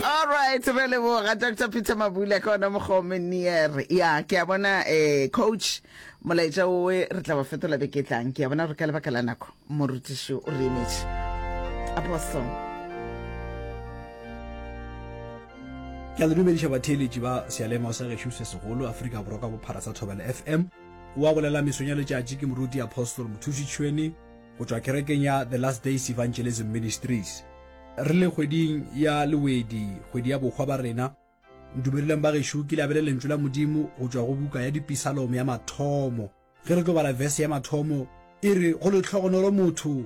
alright re leboga dr peter mabula ka ona mokgome near ya ke a bona um coach molaetša owe re tla ba fetola beke tlang ke a bona gore ka lebaka la nako morutiši o re emetše apostle ke a le dumediša batheeletši ba sealema sa gešo se segolo afrika borwa ka bophara sa thobela fm wa go lela mesong ya letšatši ke moruti apostol mothuši tšhweni go tšwa kerekeng ya The Last Days Evangelism Ministries. Re le kgweding ya lewedi, kgwedi ya bokgwa ba rena. Ntumeleleng ba gešo ke labele lentšu la Modimo go tšwa go buka ya dipisalomo ya mathomo. Ge re tlo bala verse ya mathomo, e re go lehlogonolo motho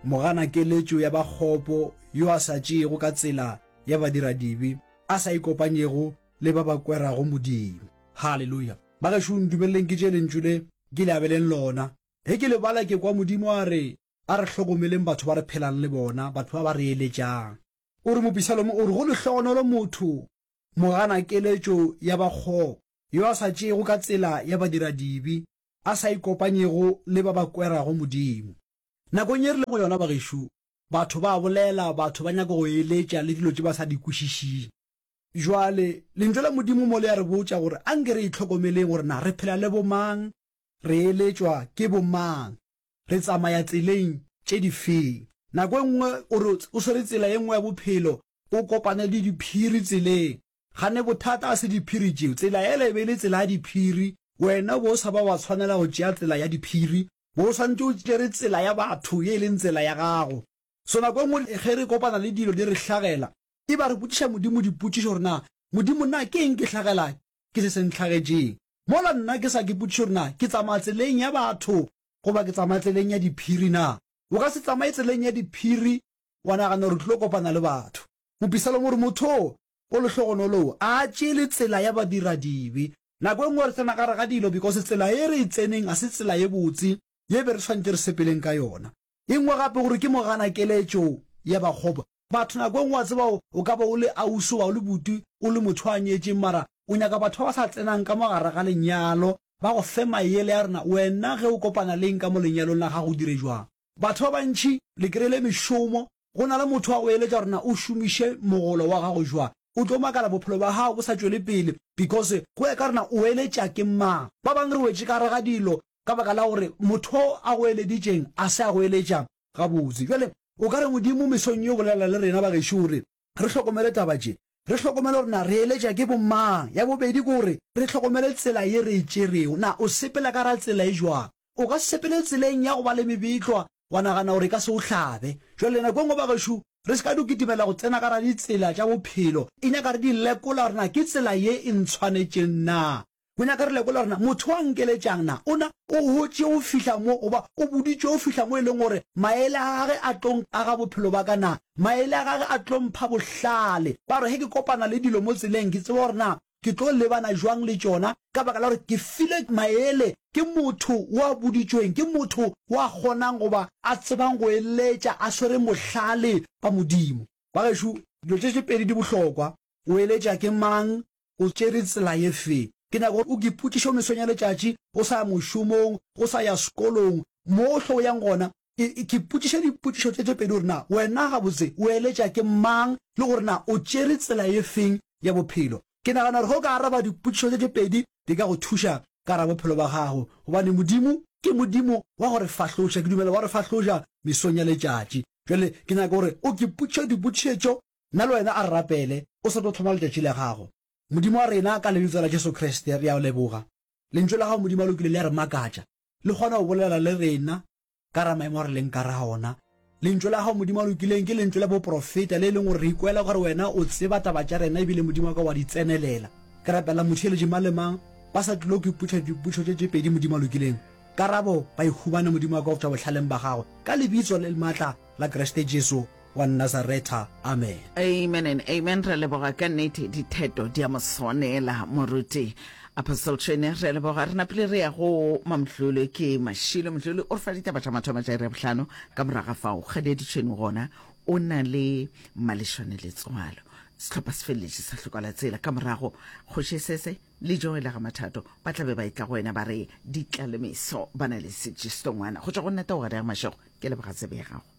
mogana keletšo ya bakgopo yo a sa tšeego ka tsela ya badiradibe, a sa ikopanyego le ba ba kwerago Modimo. Haleluya! Ba gešo ntumeleleng ke tše lentšu le ke labeleng lona. Ge ke lebala ke kwa Modimo a re, A re hlokomeleng batho ba re phelang le bona, batho ba ba re eletšang. O re, Mopisalomo o re, Go lehlogonolo motho moganakeletšo ya bakgopo, yo a sa tšeego ka tsela ya badiradibe, a sa ikopanyego le ba ba kwerago Modimo. Nakong ye re lego go yona, bagešo, batho ba a bolela, batho ba nyaka go eletša le dilo tše ba sa di kwešišing. Bjale, Lentšu la Modimo mo le a re botša gore anke re itlhokomeleng gore na re phela le bomang, Re eletšwa ke bomang? Re tsamaya tseleng tše difeng? Nako e nngwe o re o swere tsela ye nngwe ya bophelo, o kopane le diphiri tseleng. Gane bothata ga se diphiri tšeo. Tsela yela e be e le tsela ya diphiri, wena o be o sa ba wa tshwanela go tšea tsela ya diphiri, bo o swanetše o tšere tsela ya batho ye e leng tsela ya gago. So nako e nngwe ge re kopana le dilo di re hlagela, e ba re botšiša Modimo dipotšišo gore na Modimo na ke eng ke hlagela ke se se nhlagetšeng? Mola nna ke sa ke potšiše gore na ke tsamaya tseleng ya batho goba ke tsamaya tseleng ya diphiri. Na o ka se tsamaye tseleng ya diphiri wa nagana gore o tlilo kopana le batho. Mopisaloma o re, Motho o o lehlogonolo o a tšele tsela ya badiradibe. Nako e nngwe re tsena gare ga dilo because tsela e re e tseneng ga se tsela ye botse ye be re swanetše re sepeleng ka yona. E nngwe gape gore ke moganakeletšo ya bakgopa. Batho nako e nngwe wa tseba o ka ba o le ausi goba o le buti, o le motho a nyetšeng mara o nyaka batho ba ba sa tsenang ka mo gare ga lenyalo ba go fe mayele ya gore na wena ge o kopana le eng ka mo lenyalong la gago o dire jwang. Batho ba bantši le kry-ile mešomo go na le motho wa go eletša gore na o šomiše mogolo wa gago jwang. O tlo makala bophelo bja gago bo sa tšwele pele because go ya ka gore na o eletša ke mang. Ba bangwe re wetše ka gare ga dilo ka baka la gore motho o a go eleditšeng a se a go eletša gabotse. Bjale, o ka re, Modimo, mesong ye o bolela le rena bagešo o re re hlokomele taba tše. Re hlokomele gore na re eletša ke bomang. Ya bobedi ke gore re hlokomele tsela ye re e tšerego. Na o sepela ka gare ga tsela e jwang? O ka se sepele tseleng ya go ba le mebetlwa wa nagana gore e ka se o hlabe. Bjale, nako e nngwe bagešo re se ka do kitimela go tsena ka gare ga ditsela tša bophelo, e nyaka re di lekola gore na ke tsela ye e ntshwanetšeng na. Go nyaka re lekole gore na motho a nkeletšang na o na o hotše go fihla mo goba o boditšwe go fihla mo e leng gore maele a gage a tlo nkaga bophelo ba ka na maele a gage a tlo mpha bohlale ba gore ge ke kopana le dilo mo tseleng ke tseba gore na ke tlo lebana jwang le tšona ka baka la gore ke file maele ke motho wa boditšweng ke motho wa kgonang goba a tsebang go eletša a swere bohlale ba modimo ba gešo dilo tše tše pedi di bohlokwa O eletša ke mang? O tšere tsela ye fe? Ke nyaka gore o ke ipotšiše o mesong ya letšatši o sa ya mošomong, o sa ya sekolong, mohle o yang gona. E, ke ipotšiše dipotšišo tše tše pedi gore na wena gabotse o eletša ke mang le gore na o tšere tsela ye feng ya bophelo. Ke nagana gore ge o ka araba dipotšišo tše tše pedi di ka go thuša ka gare ga bophelo ba gago gobane Modimo ke Modimo wa go re fahloša. Ke dumela wa re fahloša mesong ya letšatši. Jwale ke nyaka gore o ke ipotšiše dipotšišetšo Nna le wena a re rapele, o se tlo tlhoma letšatši la gago. Modimo wa rena, ka Lebitso la Jesu Kriste, re a O leboga. Lentšu la Gago, Modimo, le kile la re makatša. Le kgona go bolela le rena ka ra maemo a re leng ka ra ona. Lentšu la Gago, Modimo, le kileng ke lentšu la boprofeta, le e leng gore re ikwela gore Wena o tseba taba tša rena ebile, Modimo wa ka, wa di tsenelela. Ke rapela motheeletši mang le mang ba sa tlilo go ipotša dipotšo tše tše pedi, Modimo, le kileng karabo ba e humane, Modimo wa ka, go tšwa bohlaleng ba Gago, ka Lebitso le le maatla la Kriste Jesu. wa Nazaretha. Amen. Amen and amen. Re leboga ka nete ditheto di a mo swanela moruti Apostle Tshwene. Re leboga re napile re ya go Mamdluli ke Mashilo. Mdluli o re fa ditaba tša mathomo tša iri ya bohlano ka moraga fao Kgadiedi Tshwene gona o na le malešwane letswalo. Sehlopha se feleletše sa hlokola tsela ka morago Kgoši Esese le Joela ga Mathato ba tla be ba etla go wena ba re ditlalemeso ba na le setši setongwana go tšwa go nna Taogadege Mashego. Ke leboga tsebe ya gago.